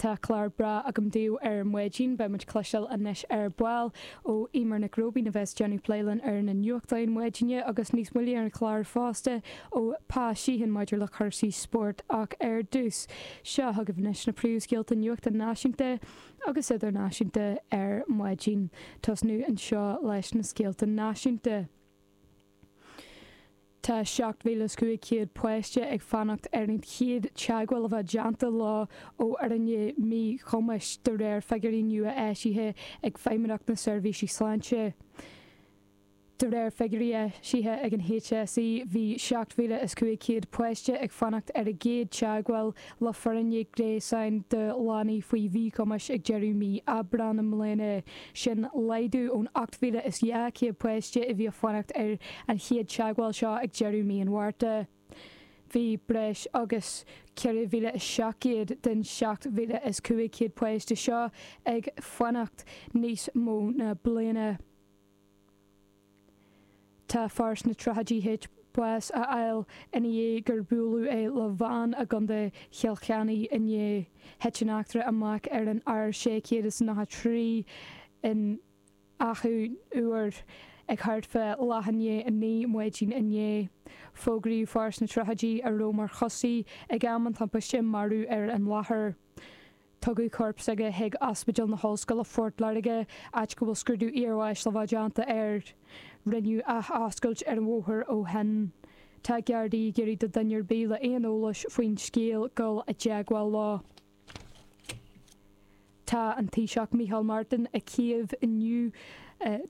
Tá clár breá agam daoibh ar maidin. Beidh muid cloisteáil anois ar ball ó Eimear Nic Róibín a bheas déanamh plé linn ar na nuachtáin maidine agus níos moille ar an chlár fosta ó Pa Sheehan maidir le cúrsaí spóirt ach ar dtús, seo chugaibh anois na príomhscéalta nuachta náisiúnta agus idirnáisiúnta ar maidin. Tosnú anseo leis na scéalta náisiúnta. Tá 7,500 páiste ag fanacht ar an chéad teagmháil a bheith déanta leo ó fhoirne míchumais, de réir figiúirí nua eisithe ag Feidhmeannacht na Seirbhísí Sláinte. De réir figiúirí eisithe ag an HSE, bhí 7,500 páiste ag fanacht ar a gcéad teagmháil le foirne gréasáin do leanaí faoi mhíchumais ag deireadh mhí Aibreáin i mbliana, sin laghdú ón 8,200 páiste a bhí ag fanacht ar an chéad teagmháil seo ag deireadh mhí an Mhárta. Bhí breis agus 4,700 den 7,500 páiste seo ag fanacht níos mó ná bliana. Tá fear sna tríochaidí tar éis bás a fháil ina dhiaidh gur buaileadh é le veain i gContae Chill Chainnigh inné. Thit an eachtra amach ar an R693 in Achadh Úr ag thart fá leath i ndiaidh a naoi maidin inné. Fógraíodh fear sna tríochaidí a raibh mar choisí ag am an timpiste marbh ar an láthair. Tugadh corp s'aige chuig Ospidéal na hOllscoile Phort Láirge, áit go bhfuil scrúdú iarbháis le bheith déanta air. Rinneadh athoscailt ar an bhóthar ó shin. Tá Gardaí ag iarraidh do dhuine ar bith le aon eolais faoin scéal dul i dteagmháil leo. Tá an Taoiseach Micheál Martin i Kyiv inniu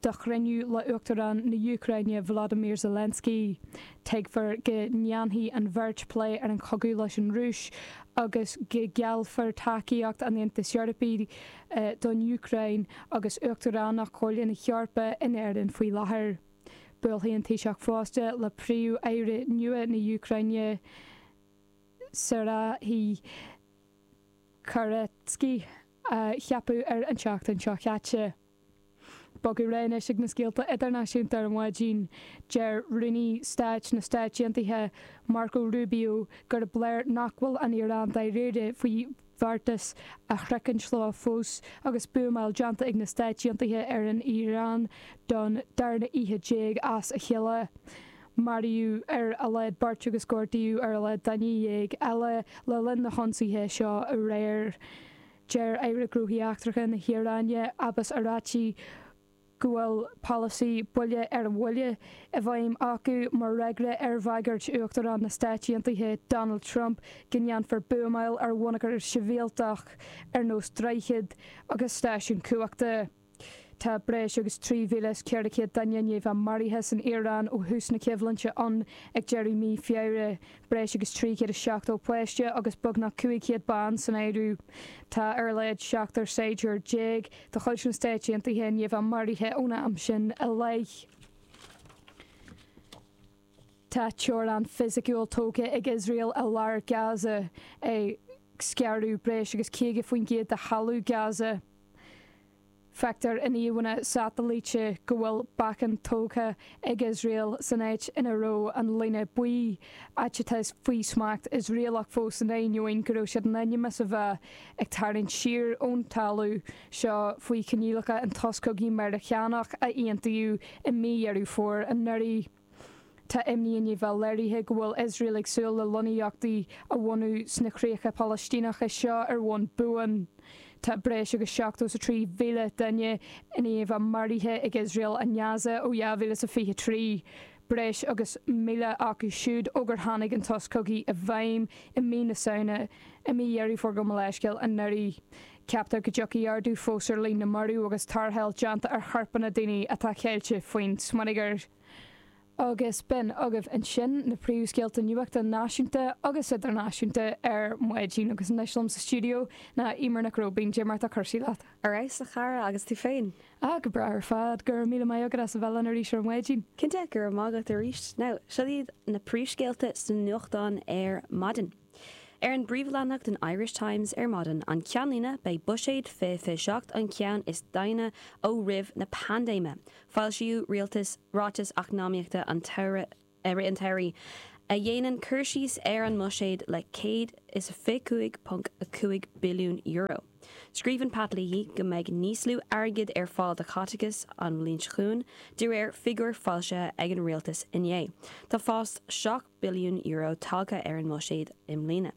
do chruinniú le Uachtarán na Úcráine Volodymyr Zelensky. Tuigfear go ndéanfaidh an bheirt plé ar an chogadh leis an Rúis agus go ngeallfar tacaíocht an Aontais Eorpaigh don Úcráin agus Uachtaránacht Chomhairle na hEorpa in Éirinn faoi láthair. Buailfidh an Taoiseach fosta le Príomh-Aire nua na hÚcráine, Serhiy Koretskyi, a ceapadh ar an tseachtain seo caite. Bogadh ar aghaidh anois ag na scéalta idirnáisiúnta ar an mhaidin. Deir Rúnaí Stáit na Stáit Aontaithe, Marco Rubio, gurb léir nach bhfuil an Iaráin dáiríre faoi bheartas a shroichint leo fós agus buamáil déanta ag na Stáit Aontaithe ar an Iaráin don darna oíche déag as a chéile. Maraíodh ar a laghad beirt agus gortaíodh ar a laghad duine dhéag eile le linn na hionsaithe seo aréir. Deir Aire Gnóthaí Eachtracha na hIaráine, Abbas Araghchi, go bhfuil polasaí buille ar an bhuille i bhfeidhm acu mar fhreagra ar bhagairt Uachtarán na Stáit Aontaithe, Donald Trump, go ndéanfar buamáil ar bhonneagar sibhialtach ar nós droichid agus stáisiúin cumhachta. Tá breis agus 3,400 duine i ndiaidh a bheith maraithe san Iaráin ó thús na coimhlinte ann ag deireadh mhí Feabhra, breis agus 370 páiste agus beagnach 500 bean san áireamh. Tá ar a laghad seachtar saighdiúir déag de chuid na Stáit Aontaithe i ndiaidh a bheith maraithe ón am sin i leith. Tá teorainn fisiciúil tógtha ag Iosrael i lár Gaza, ag scaradh breis agus 50% de thalamh Gaza. Feictear in íomhánna satailíte go bhfuil bacainn tógtha ag Iosrael san áit ina raibh an líne buí, áit atá faoi smacht Iosraelach fós in ainneoin go raibh siad in ainm is a bheith ag tarraingt siar ón talamh. seo faoi choinníollacha an tsos cogaidh Meiriceánach a aontaíodh i mí Dheireadh Fómhair anuraidh. Tá imní i ndiaidh a bheith léirithe go bhfuil Iosrael ag súil le lonnaíochtaí a bhunú sna críocha Palaistíneacha seo ar bhonn buan. Tá breis agus 73,000 duine i ndiaidh a bheith maraithe ag Iosrael i nGaza ó 2023, breis agus 1,000 acu siúd ó gur tháinig an tsos cogaidh i bhfeidhm i mí na Samhna i mí Dheireadh Fómhair gabh mo leithscéal anuraidh. Ceaptar go dtiocfaidh ardú fós ar líon na marbh agus tarrtháil déanta ar chorpanna daoine atá caillte faoin smionagar. Agus b'in agaibh ansin na príomhscéalta nuachta náisiúnta agus idirnáisiúnta ar maidin agus anois liom sa stiúideo ná Eimear Nic Róibín. Cad é mar atá cúrsaí leat? Ar fheabhas a chara, agus tú féin? Ah, go breá ar fad, go raibh míle maith agat as a bheith linn arís ar maidin. Cinnte, go raibh maith agat arís. Now, seo iad na príomhscéalta sna nuachtáin ar maidin. Ar an bpríomhleathanach den Irish Times ar maidin an Ceannlíne beidh buiséad 2027 an ceann is daingne ó roimh na paindéime. Foilsíodh rialtas, ráiteas eacnamaíochta an tsa an tsamhraidh a dhéanann cur síos ar an mbuiséad le €125.5 billiún. Scríobhann Pat Leahy go mbeidh níos lú airgid ar fáil do chaiteachas an bhliain seo chugainn de réir figiúir foilsithe ag an rialtas inné. Tá fás billiún euro tagtha ar an mbuiséad i mbliana.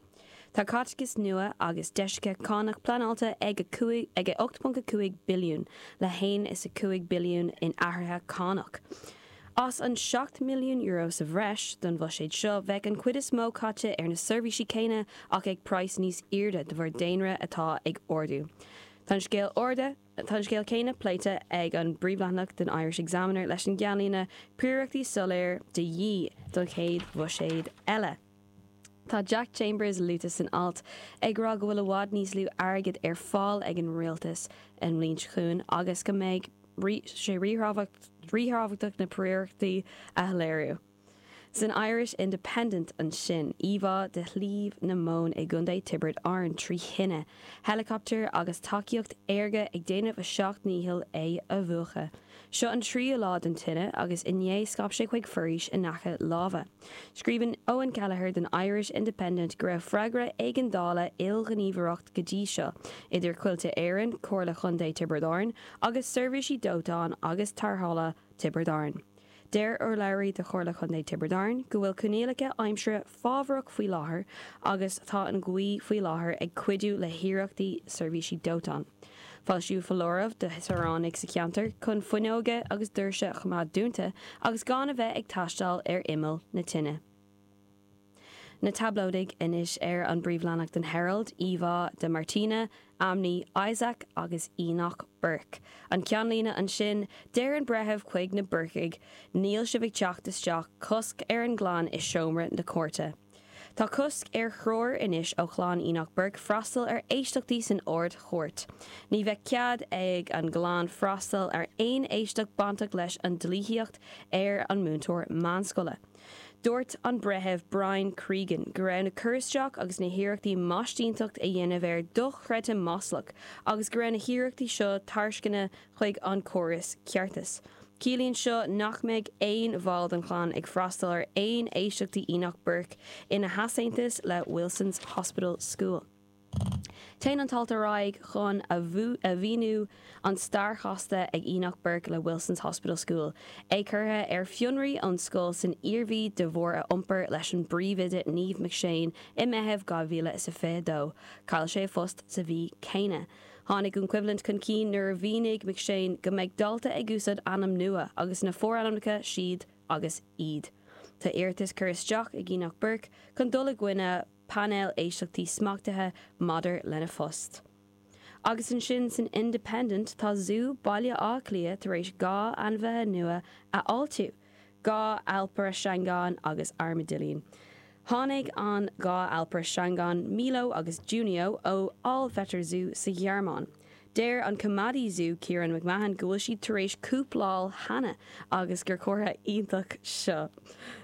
Tá caiteachas nua agus deisithe cánach pleanáilte ag 8.5 billiún le haon is 5 billiún in athruithe cánach. As an 7 mbilliún euro sa bhreis don bhuiséad seo, beidh an chuid is mó caite ar na seirbhísí céanna ach ag praghas níos airde de bharr daonra atá ag ardú. Tá an scéal arda. Tá an scéal céanna pléite ar an bpríomhleathanach den Irish Examiner leis an gceannlíne 'Príorachtaí soiléir de dhíth don chéad bhuiséad eile'. Tá Jack Chambers luaite san alt, ag rá go bhfuil i bhfad níos lú airgid ar fáil ag an rialtas i mbliain chugainn agus go mbeidh sé ríthábhachtach na príorachtaí a shoiléiriú. San Irish Independent ansin, íomhá de Shliabh na mBan i gContae Tiobraid Árann trí thine, héileacaptair agus tacaíocht aerga ag déanamh a seacht ndícheall é a mhúchadh. Seo an tríú lá den tine agus inné scaip sé chuig foraois in aice láimhe. Scríobhann Eoghan Kelleher don Irish Independent go raibh freagra éigeandála ilghníomhaireacht go dtí seo idir Coillte Éireann, Comhairle Chontae Tiobraid Árann agus Seirbhísí Dóiteáin agus Tarrthála Tiobraid Árann. Deir urlabhraí do Chomhairle Contae Tiobraid Árann go bhfuil coinníollacha aimsire fábharach faoi láthair agus tá an ghaoth faoi láthair ag cuidiú le hiarrachtaí seirbhísí dóiteáin foilsíodh foláireamh do shaoránaigh sa cheantar chun fuinneoga agus doirse a choimeád dúnta agus gan a bheith ag taisteal ar imeall na tine. Na Tablóidigh, anois ar an bpríomhleathanach den Herald, íomhá de Martina, Ammi, Isaac agus Enoch Burke. An ceannlíne ansin, deir an breitheamh chuig na Burcaigh, Níl sibh ag teacht isteach, cosc ar an gclann i seomra na cúirte. Tá cosc ar thriúr anois ó chlann Enoch Burke freastal ar éisteachtaí san Ard-Chúirt. Ní bheidh cead ag an gclann freastal ar aon éisteacht bainteach leis an dlíthíocht ar an múinteoir meánscoile. Dúirt an Breitheamh Brian Cregan go raibh na cur isteach agus na hiarrachtaí maistínteacht a dhéanamh air dochreidte maslach agus go raibh na hiarrachtaí seo tarcaisneach chuig an córas ceartais. Ciallaíonn seo nach mbeidh aon bhall den chlann ag freastal ar aon éisteachtaí Enoch Burke ina heasaontas le Wilson's Hospital School. Téann an t-alt ar aghaidh chun a mhíniú an stair chasta ag Enoch Burke le Wilson's Hospital School, é curtha ar fionraí ón scoil san Iarmhí de bharr a iompair leis an bpríomhoide Niamh McShane i Meitheamh 2022. Chaill sé a phost sa mhí céanna. Tháinig an choimhlint chun cinn nuair a mhínigh McShane go mbeidh dalta ag úsáid ainm nua agus na forainmneacha siad agus iad. Tá iarratas curtha isteach ag Enoch Burke chun dul i gcoinne. painéal éisteachtaí smachtaithe maidir lena phost. Agus ansin san Independent, tá Zú Bhaile Átha Cliath tar éis dhá ainmhithe nua a fháiltiú, dhá alpaire seangáin agus armadailín. Tháinig an dhá alpaire seangáin Milo agus Junio ó Allwetter Zoo sa Ghearmáin. Deir an Coimeádaí Zú, Ciaran McMahon, go bhfuil siad tar éis cúpláil cheana agus gur comhartha iontach seo.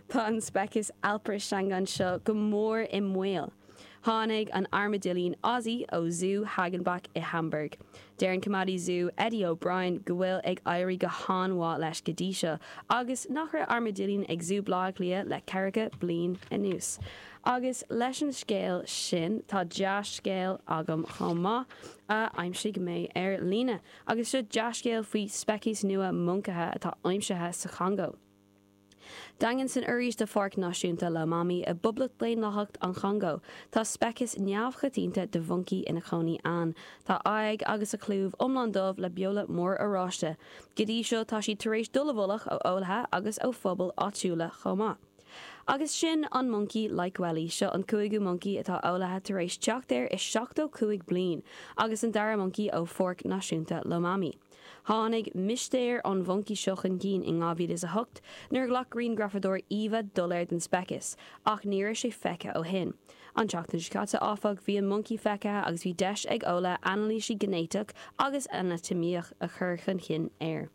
Tá an speiceas Alpaire seangán seo go mór i mbaol. Tháinig an armadailín Ozzy ó Zú Hagenbeck i Hamburg. Deir an Coimeádaí Zú, Eddie O'Brien, go bhfuil ag éirí go han-mhaith leis go dtí seo agus nach raibh armadailín ag Zú Bhleá Cliath le ceathracha bliain anuas. Agus leis an scéal sin, tá dea-scéal agam chomh maith. a d'aimsigh mé ar líne agus seo dea-scéal faoi speiceas nua moncaithe atá aimsithe sa Chongó. Daingean san fhoraois de Pháirc Náisiúnta Lomami i bPoblacht Dhaonlathacht an Chongó, tá speiceas neamhchoitianta de mhoncaí ina chónaí ann. Tá a aghaidh agus a chlúmh iomlán dubh le beola mór oráiste. Go dtí seo tá siad tar éis dul i bhfolach ó eolaithe agus ó phobail áitiúla chomh maith. Agus sin an moncaí Likweli, seo an cúigiú moncaí atá eolaithe tar éis teacht air i seachtó cúig bliain agus an dara moncaí ó Pháirc Náisiúnta Lomami. Tháinig mistéir an mhoncaí seo chun cinn in 2008 nuair a ghlac griangrafadóir íomha doiléir den speiceas, ach ní raibh sé feicthe ó shin. An tseachtain seo caite, áfach, bhí an moncaí feicthe agus bhí deis ag eolaithe anailísí géiniteach agus anatamaíoch a chur chun cinn air.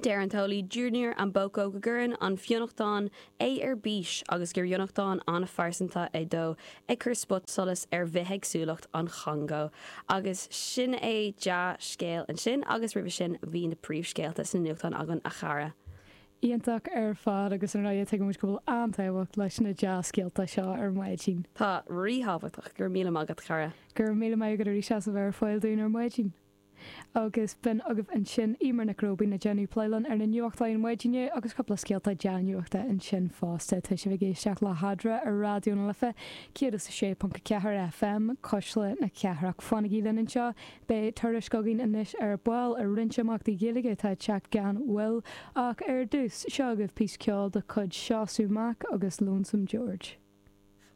Deir an t-eolaí Junior Amboko go gcuireann an fionnachtain é ar bís agus gur fhionnachtain an-phearsanta é dó, ag cur spotsolais ar bhithéagsúlacht an Chongó. Agus sin é dea-scéal ansin agus roimhe sin bhí na príomhscéalta sna nuachtáin againn, a chara. Iontach ar fad agus ar ndóigh tuigimid go bhfuil an-tábhacht leis na dea-scéalta seo ar maidin. Tá, ríthábhachtach. Go raibh míle maith agat, a chara. Go raibh míle maith agat arís as a bheith ar fáil dúinn ar maidin. Agus b'in agaibh ansin Eimear Nic Róibín ag déanamh plé linn ar na nuachtáin maidin inniu agus cúpla scéalta dea-nuachta ansin fosta. Tá sibh ag éisteacht le hEadra ar Raidió na Life 106.4 FM, Cuisle na Cathrach. Fanaigí linn anseo, beidh tuairisc againn anois ar ball ar roinnt imeachtaí Gaeilge atá ag teacht gan mhoill, ach ar dtús, seo agaibh píosa ceoil de chuid Seosamh Mac agus Lonesome George.